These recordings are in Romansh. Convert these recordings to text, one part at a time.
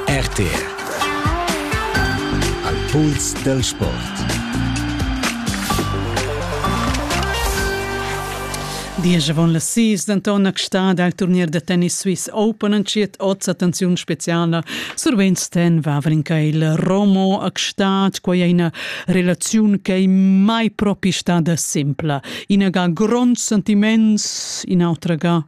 RTR Al puls dal sport Diesch avon las sis denton extà dal turnier da tennis Swiss Open entschiet oz attenziun speciala. Sur Weinstein Vavrinka il Romo extat, quei è ina relaziun che è mai propi stada simpla. Ina ga grond sentiment, in'autra ga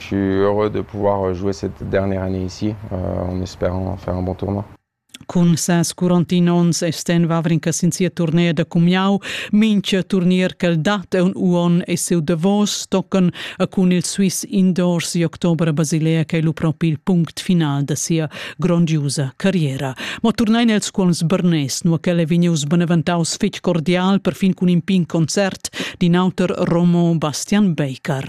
Je suis heureux de pouvoir jouer cette dernière année ici en espérant faire un bon tournoi. Cun ses 41 onns è Sten Wawrinka sin sia turnea da cumiau. Mincha turnier ch'el dat è un uon e siu davos tocan a cun il Swiss Indoors di october a Basilea che è lu propi il punct final da sia grondiusa carriera. Ma turnein els cuolms Bernes, nu ch'el è vegnius beneventaus fitg cordial perfin cun in pin concert din auter Romo Bastian Baker.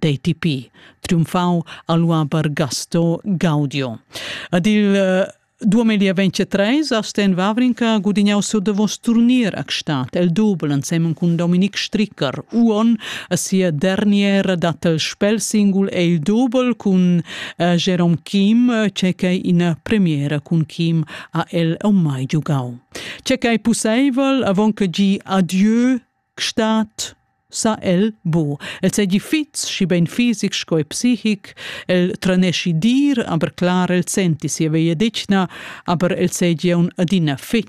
d'ATP, triumfau a Lua per Gasto Gaudio. Ed il 2023 a Sten Wawrinka gudignau sur de vos turnier a Gstaad, el double insemmen cun Dominic Stricker, Uon, a sia derniera dat el spelsingul e il double cun uh, Jerome Kim, c'è che in premiera cun Kim a el o mai giugau. C'è che è possibel, avon che gi adieu Gstaad sa el bu. El seigi fitg schi bein fisic sco e psichic, el tranesci dir, aber clar el senti sia vegliadetgna, aber el seigi un adina fitg